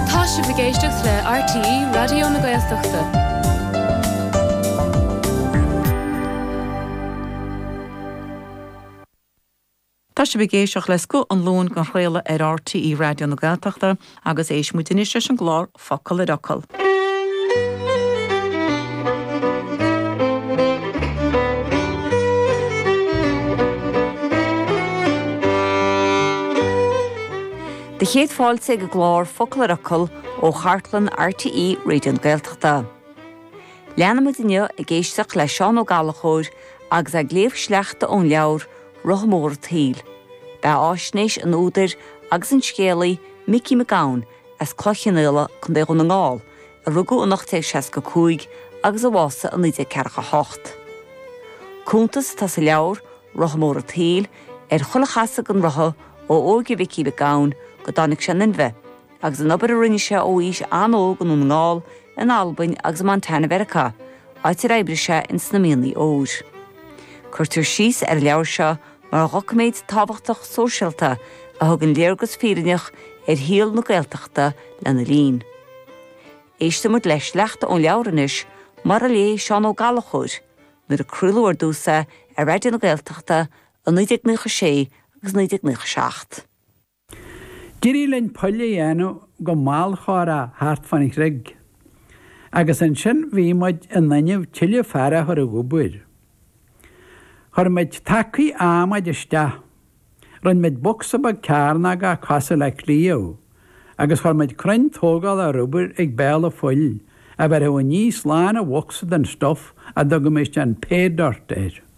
Tá sibh ag éisteacht le RTÉ Raidió na Gaeltachta. Tá sibh ag éisteacht le Scoth an Luain dhá chraoladh ar RTÉ Raidió na Gaeltachta agus éistfidh muid anois leis an gclár Focal ar Fhocal. Do chéad fáilte ag an gclár Focal ar Fhocal ó chartlann RTÉ Raidió na Gaeltachta. Leanfaimid inniu ag éisteacht le Seán Ó Gallachóir agus é ag léamh sleachta ón leabhar 'Rotha Mór an tSaoil'. Beathaisnéis an údair agus an scéalaí Micí Mac Gabhann as Cloich Chionnaola, Co. Dhún na nGall, a rugadh in 1865 agus a bhásaigh in 1948. Cuntas atá sa leabhar, Rotha Mór an tSaoil, ar chuile chasadh den rotha ó óige Mhicí Mhic Gabhann go dtáinig sé in inmhe, agus an obair a rinne sé ó aois an-óg i nDún na nGall, in Albain agus i Montana Mheiriceá, áit ar oibrigh sé ins na mianaigh óir. Cuirtear síos ar an leabhar seo mar dhoiciméad tábhachtach sóisialta a thugann léargas fírinneach ar shaol na Gaeltachta lena linn. Éistfidh muid le sleachta ón leabhar anois, mar a léigh Seán Ó Gallachóir, nuair a craoladh ar dtús é ar Raidió na Gaeltachta i 1996 agus 1997. D'éirigh linn poill a dhéanamh go mall chomhrá thart fán chreig agus ansin bhí muid in inmhe tuilleadh fear a chur ag obair. Chuir muid tacaí adhmaid isteach, rinn muid bocsa beag cearnógach cosúil le cliabh agus chuir muid crainn tógála ar obair ag béal an phoill a bhéarfadh aníos lán an bhocsa den stuif a dtugaimis an 'pay dirt' air.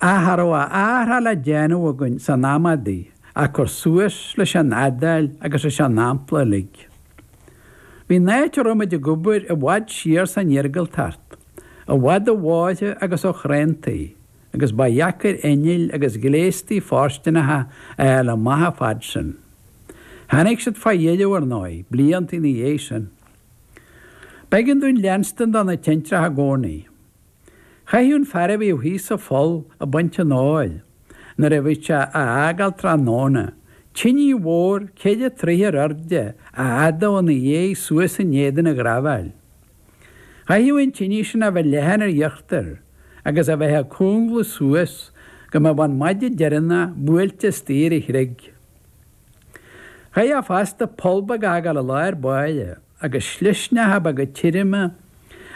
Ach cha raibh a athrach le déanamh againn san am adaí ach cur suas leis an fhadáil agus leis an ampla uilig. Bhí an áit a raibh muid ag obair i bhfad siar san iargúltacht, i bhfad ó bhóithre agus ó chuantaí, agus ba dheacair innill agus gléastaí fóirsteanacha a fháil amach a fhad sin. Tháinig siad fá dheireadh, ar ndóigh, blianta ina dhiaidh sin. B'éigean dúinn leanstan do na tintreacha i gcónaí. Chaithfeadh an fear a bhíodh thíos sa pholl ag baint an óir nuair a bhíodh sé á fhágáil tráthnóna. Tinidh mhór, ceithre troighe ar airde, a fhadú ina dhéidh suas in éadan an ghraibhéil. Chaithfeadh an tinidh sin a bheith leathan ar íochtar agus a bheith ag cúnglú suas go mbeadh an maide deireanach buailte istigh ar an chreig. Chaithfeadh sé fosta poll beag a fhágáil i lár báire. agus slisneacha beaga tirime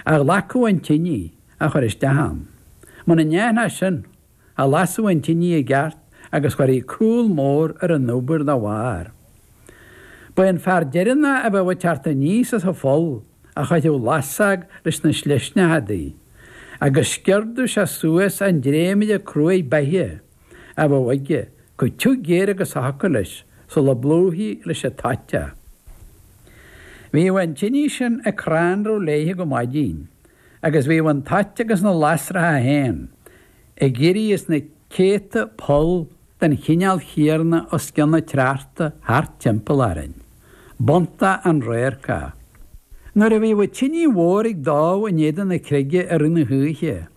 a ghlacadh an tinidh a chur isteach ann. Muna ndéantaí sin, cha lasadh an tinidh i gceart agus chuirfí cúl mór ar an obair dá bharr. Ba é an fear deireannach a bheadh ag teacht aníos as an pholl a chuirfeadh lasadh leis na slisneacha adaí, agus sciordadh sé suas an dréimire cruaidh beithe. a bheadh aige comh tiugh géar agus a thiocfadh leis sula bplúichí leis an toit é. Bhíodh an tinidh sin ag crannradh léithe go maidín agus bhíodh an toit agus na lasracha féin ag éirí as na céadta poll den chineál chéarna os cionn an tsneachta thart timpeall orainn. B'iontach an radharc é. Nuair a bhíodh tinidh mhór ag dó in éadan na creige i rith na hoíche,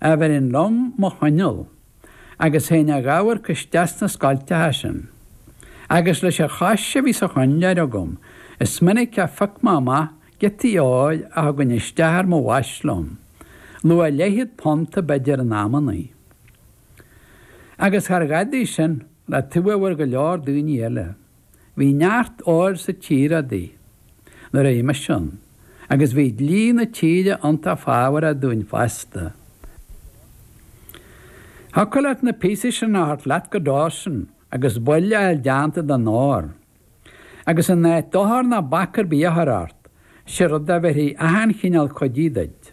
bheirinn liom mo choinneal agus théinn a dh'amharc isteach sna scoilteacha sin. Agus leis a' chois a bhí sa choinnleoir agam is minic a phioc me amach giotaí óir a thugainn isteach ar mo bhais liom, luach leithchéad punt b'fhéidir in amannaí. Agus char dhadaidh sin le taobh a bhfuair go leor daoiní eile. Bhí neart óir sa tír adaí na réimeas sin agus bhí dlí na tíre iontach fábharach dúinn fosta. Thiocfadh leat na píosaí sin a thabhairt leat go Dawson agus baill a fháil deánta den ór. Agus in áit dochar ná bac ar bith a chur ort, 'sé rud a bheirfí achan chineál cuidí duit.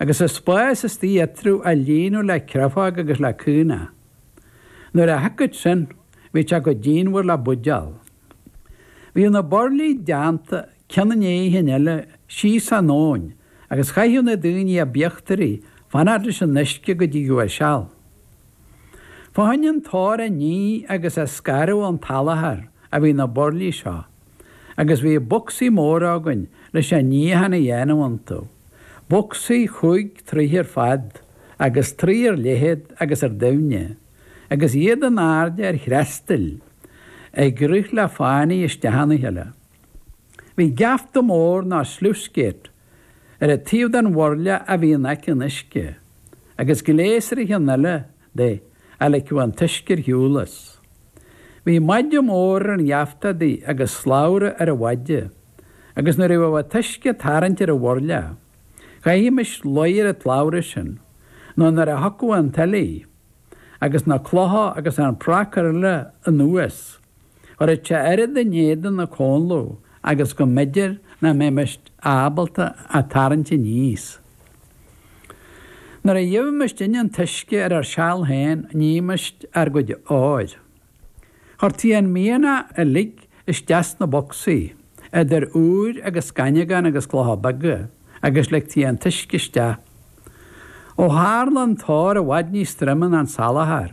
agus an spás istigh eatarthu a líonadh le créafóg agus le caonach. Nuair a shiocfadh sin, bhí sé comh díonmhar le buidéal. Bhíodh na burlaí deánta cionn i ndéidh an chinn eile síos an abhainn agus chaithfeadh na daoine ab íochtaraí fanacht leis an uisce go dtigeadh a seal. Fá choinne an t-ór a ní agus a scaradh ón tsalachar a bhí na burlaí seo. agus bhí bocsaí móra againn leis an níochán a dhéanamh iontu. Bocsaí chúig troigh ar fad agus trí ar leithead agus ar doimhne, agus iad in airde ar threastail ag rith le fánaidh isteach ina chéile. Bhí geafta mór ná sluice gate ar an taobh den bhurla a bhí in aice an uisce, agus gléas ar an chionn eile de a ligfeadh an t-uisce ar shiúl as. Bhí maide mór ar an gheafta adaí agus slabhra ar an mhaide, agus nuair a bhíodh an t-uisce ag tarraingt ar an bhurla, chaithfimis luí ar an tslabhra sin, nó nuair a thiocfadh an tuile, agus na clocha agus an pracar eile anuas, Rithte oiread in éadan na comhladh agus go mb'fhéidir nach mbeimis ábalta a tarraingt aníos. Nuair a gheibhimisinne an t-uisce ar ár seal féin nímis ár gcuid óir. Chuirtí an mianach uilig isteach sna bocsaí, idir úir agus scaineagán agus clocha beaga, agus ligtí an t-uisce isteach. Ó tharla an t-ór i bhfad níos troime ná an salachar.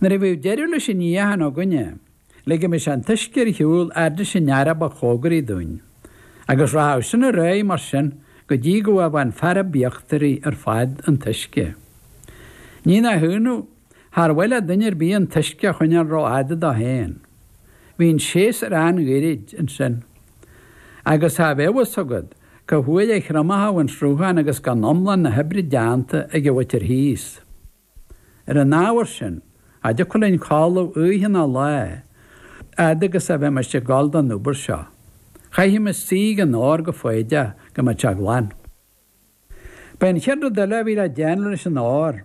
Nuair a bhíodh deireadh leis an níochán againne, ligimis an t-uisce ar shiúl fhad leis an fhear a ba chomhgaraí dúinn, agus rachadh sin ar aghaidh mar sin go dtí go bhfaigheadh an fear ab íochtaraí ar fad an t-uisce. Ní nach ionadh, char mhaith le duine ar bith an t-uisce a choinneáil ró-fhada dó féin. Bhí an séasúr an-ghairid ansin. Agus cha bheadh a fhios agat, Cá huair a thriomóchadh an sruthán agus gan iomlán na hoibre déanta ag an mhuintir thíos. Ar an ábhar sin, cha dtiocfadh linn codladh oíche ná lá, a fhad agus a bheimis ag gabháil don obair seo. Chaithfimis suí ag an ór go foighdeach go mbeadh sé glan. B'é an chéad rud eile a bhí le déanamh leis an ór,